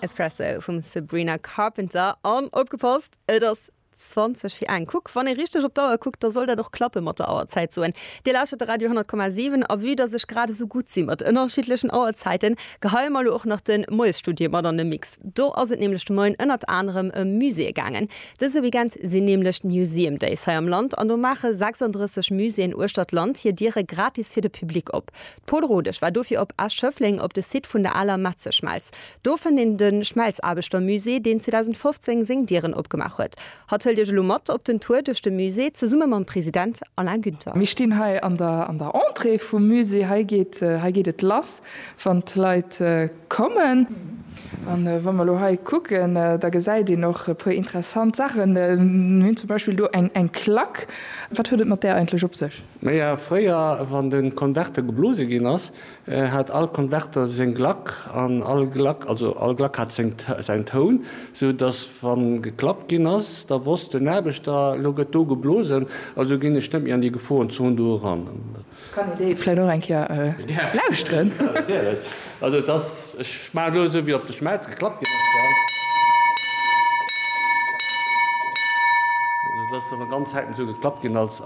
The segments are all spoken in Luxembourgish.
Espresso vum Sabrina Carpenter an opgepasst, et ass 20 fir eng. Kuck, wann ee richteg op d'Auer kuckt, da soll dat och klappen mat der Auerzäit soen. Dir lauschtert de Radio 10,7 a vue dass ech grad esou gutt si mat ënnerschiddlechen Auerzäiten, geheie mer elo och nach de Moiesstudio mat an de Mix. Do ass et nämlech de Moien ënnert anerem ëm Muséeë gaangen. Dëse Weekend sinn nämlech d'Museum Days hei am Land an do maache 36 Muséeën uechter d'Land hir Diere gratis fir de Public op. D'Pol Rodesch war dofir op Esch-Schëffleng op de Site vun der aler Metzeschmelz. Do fënnt een de Schmelzaarbechtermusée, deen 2015 seng Dieren opgemaach huet. Hatt huelt Iech elo mat op den Tour duerch de Musée zesumme mam President Alain Günther. Mir stinn hei an der Entrée vum Musée. Hei geet et lass, wann d'Leit kommen. A wa mer elo hei kucken, da gesäit een och e puer interessant Saachen. Mir hunn zum Beispill do eng Klack. Wat huet et mat där eigentlech op sech? Naja, fréier, wann de Konverter geblose ginn ass, hat all Konverter seng Glack an all Glack, also all Glack hat seng, säin Toun, sou datt wa geklappt ginn ass, da wosst den Aarbechter, elo gëtt do geblosen, also ginn ech net méi an déi Geforenzon do eran. Kann ee déi vläit och eng Kéier lauschteren? Also et ass, ech maachen elo esou wéi op de Schmelz geklappt ginn ass, well et ass elo ganz selten esou geklappt ginn als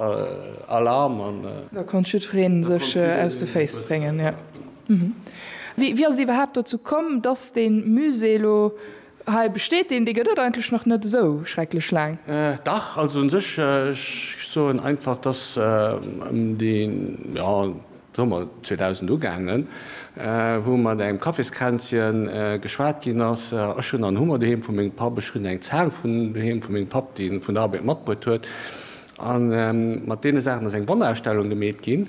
Alarm an. Da konnt jiddwereen sech aus de Féiss bréngen, jo. Wéi ass et iwwerhaapt dozou komm, dass dee Musée elo Hei besteet deen, dee gëtt et eigentlech nach net esou schrecklech laang. Dach, also un sech, ech soen einfach, dass ëm de Summer 2000 ugaangen, wou mat engem Kaffiskränzchen geschwat ginn ass, ech hunn an hu mer doheem vu mengem Papp, ech hunn eng Zaang vun doheem vu mengem Papp, dee vun der Arbeit matbruet huet, a mat deene Saachen ass eng Wanderausstellung gemeet ginn,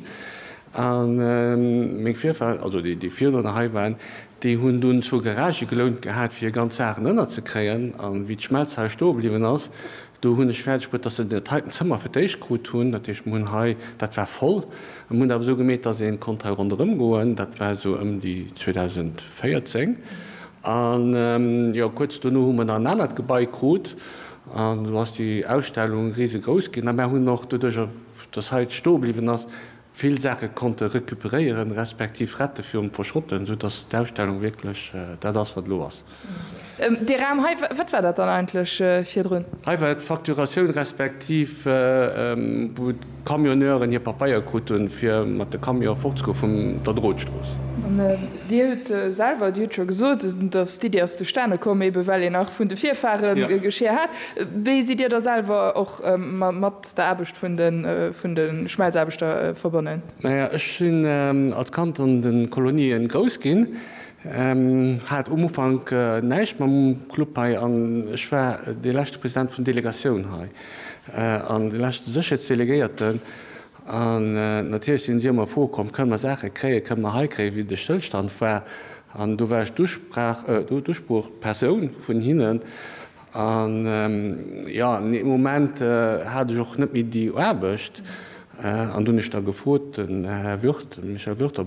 a meng Virfahre, also déi virduerno hei waren, Déi hunn dunn zwou Garagë gelount gehat, fir hir ganz Saachen ënnerzekréien. An wéi d'Schmelzhal stoe bliwwen ass, do hunn ech fäerdeg bruet, dass se dat heiten Zëmmer fir d'éischt krut hunn. Dat heescht, mir hunn hei, dat war voll. Mir hunn awer esou gemeet, dass ee konnt hei ronderëm goen. Dat war esou ëm déi 2014. An, jo, kuerz dono hu mer nach en anert Gebai krut. An elo ass déi Ausstellung risegrouss ginn. A mir hunn och doduerjer, dass hei d'stoe bliwwen ass, vill Saache konnte recuperéieren, respektiv rette virum Verschrotten, sou dass d'Ausstellung wierklech dat ass, wat elo ass. Dee Raum hei, wat war dat dann eigentlech virdrun? Hei war d'Facturatioun, respektiv wou d'Camionneuren hir Papeier krut hunn, fir mat de Camion fortzegoen vun der Drotstrooss. An Dir hutt selwer, Dir hutt scho gesot, dass d'Iddi ass zustane komm, eebe well een nach vun de Virfahre Geschier hat. Wéi sidd Dir da selwer och mat der Aarbecht vun de Schmelzaarbechter verbonnen? Naja, ech sinn als Kand an de Kolonien grouss ginn, hat um Ufank näischt mam Club hei an ech war dee leschte President vun Delegatioun hei an dee leschte Sécherheetsdelegéierten. An natierlech sinn si ëmmer Froe komm, kënne mer Saache kréien, kënne mer hei kréien, wéi de Stëllstand war. An do war ech d'Usprach, d'Usproochpersoun vun hinnen. An jo, dee Moment hat ech och net méi déi Aarbecht. An do hunn ech da gefrot, den Här Würt, Michel Würt, ob